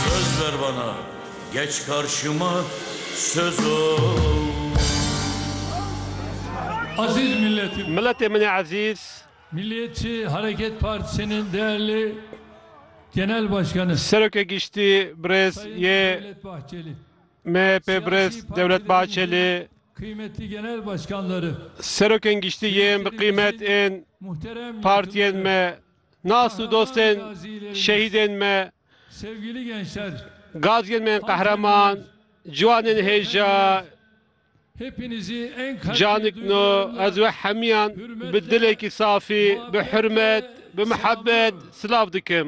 Söz ver bana geç karşıma söz o. Aziz milletim. Milletê min ê ezîz. Milliyetçi Hareket Partisi'nin değerli Genel Başkanı. Serokê Giştî birêz yê MHP birêz Dewlet Bahçeli. Kıymetli Genel Başkanları. Serokên Giştî yên bi qîmet ên partiyên me Nas û dostên şehîdên me, gaziyên me ên qehreman, ciwanên hêja canik no, ez we hemiyan bi dilekî safî, bi hurmet, bi mihebet silav dikim.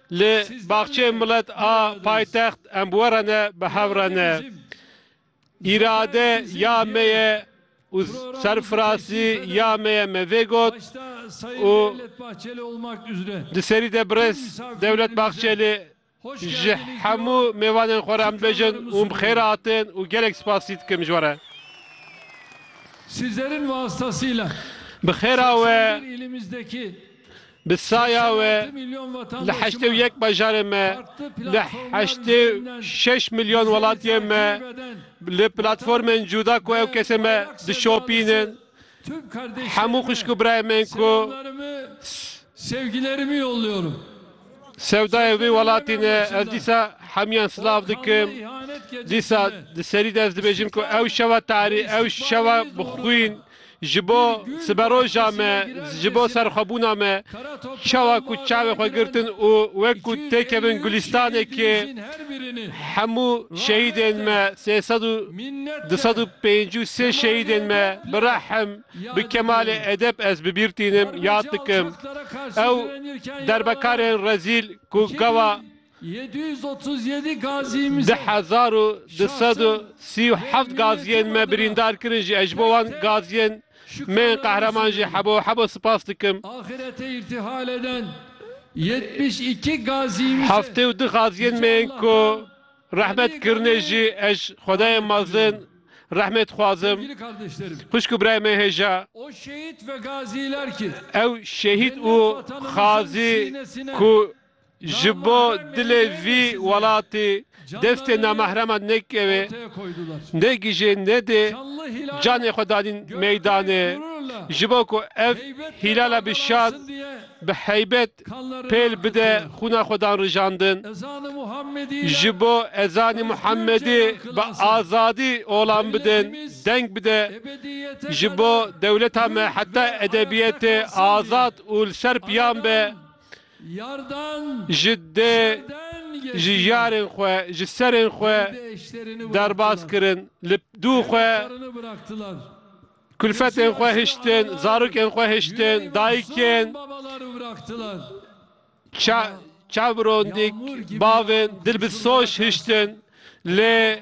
Li Baxçeyê Milet a paytext em bi we re ne, bi hev re ne. Îrade ya me ye û serfirasî ya me ye me vê got û di serî de birêz Dewlet Baxçelî ji hemû mêvanên xwe re em dibêjin hûn bi xêr hatin û gelek spasî dikim ji we re. Bi xêra we. Bi saya we li heştê û yek bajarê me, li heştê û şeş milyon welatiyên me li platformên cuda ku ew kesên me dişopînin, hemû xwişk û birayên me yên ku sewdayên vê welatî ne, ez dîsa hemûyan silav dikim. Dîsa di serî de ez dibêjim ku ew şeva tarî, ew şeva bi xwîn, Ji bo siberoja me, ji bo serxwebûna me, çawa ku çavê xwe girtin û wek ku têkevin gulîstanekê hemû şehîdên me, sê sed û du sed û pêncî û sê şehîdên me bi rehm, bi kemalê edeb ez bibîr tînim, yad dikim. Ew derbekarên rezîl ku gava. Di hezar û du sed û sî û heft gaziyên me birîndar kirin jî, ez ji bo wan gaziyên me yên qehreman jî hebo û hebo sipas dikim. Heftê û du gaziyên me yên ku rehmet kirine jî ez ji xwedayên mezin rehmê dixwazim. Xwişk û birayê me hêja ew şehîd û xazî ku, Ji bo dilê vî welatî destê namehreman nekeve, negije nede, canê xwe danîn meydanê ji bo ku ev hîlala bi şan, bi heybet pêl bide xwîna xwe dan rijandin. Ji bo ezanê Muhammedî bi azadî olan bidin deng bide, ji bo dewleta me heta edebiyetê azad û li ser piyan be, ji dê ji yarên xwe ji serên xwe derbas kirin, li dû xwe kulfetên xwe hiştin, zarokên xwe hiştin, dayikên çavrondik, bavên dil bi soş hiştin lê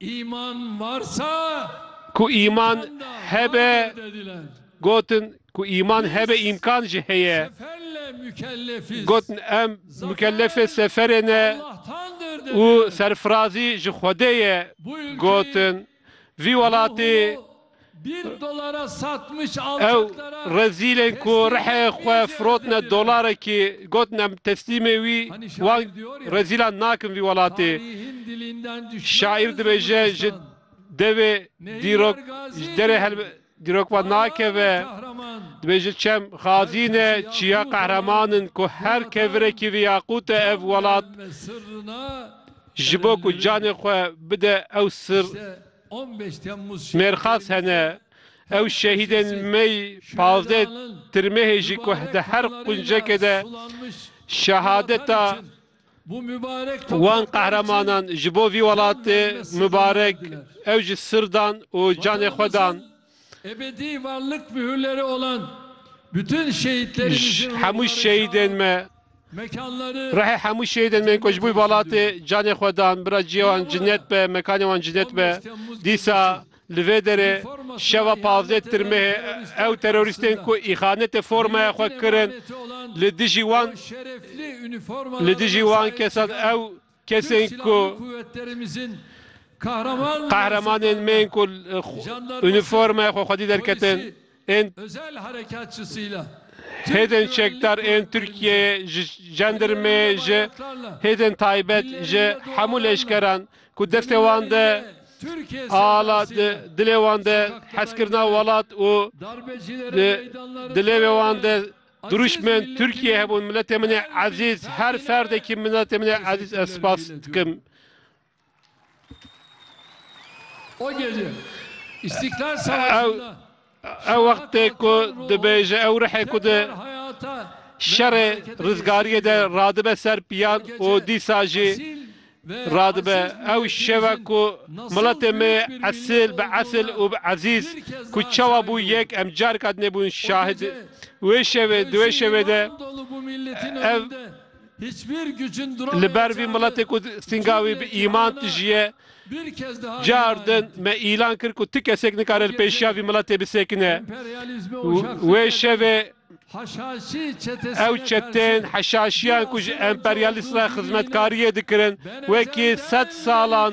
Îman varsa ku îman hebe gotin ku îman hebe îmkan jî heye. Gotin em mukellefê seferê ne û serfirazî ji Xwedê ye. Gotin vî welatî Ew rezîlên ku riheyê xwe firotine dolarekî gotine em teslîmê wî wan rezîlan nakin vî welatê. Şaîr dibêje ji devê dîrok ji derê dîrok ve nakeve. Dibêje çem xazîn e çiya qehreman in ku her kevirekî vî yaqût e ev welat ji bo ku canê xwe bide ew sir Mêrxas hene, ew şehîdên mey pazdeh tirmehê jî ku di her quncekê de şehadeta wan qehremanan ji bo vî welatê mibarek ew ji sir dan û canê xwe dan. Ji hemû şehîdên me ruhê hemû şehîdên me yên ku ji bo welatê canê xwe dan bira ciyê wan cinet be mekanê wan cinet be dîsa li vê derê şeva pazdeh tirmehê ew terorîstên ku îxanetê formaya xwe kirin li dijî wan li dijî wan kesan ew Kesên ku qehremanên me yên ku unîformaya xwe xwedî derketin ên hêdên çekdar ên Tirkiyeyê ji jandarmeyê ji hêdên taybet ji hemû leşkeran ku destê wan de ala di dilê wan de heskirina welat û di dilêvê wan de Dirûşmen, Tirkiye hebûn miletê min e ezîz, her ferdekî miletê min e ezîz ez spas dikim. Ew ew wextê ku dibêje ew rihê ku di şerê rizgariyê de radibe ser piyan û dîsa jî Radibe ew şeva ku miletê me esil bi esil û bi ezîz ku çawa bû yek em carika din bûn şahid wê şevê di wê şevê de ev li ber vî miletê ku sînga wî bi îman tijî ye car din me îlan kir ku ti kesek nikare li pêşiya vî miletê bisekine wê şevê Ew çetên heşaşiyan ku ji emperyalîst re xizmetkariyê dikirin wekî sed salan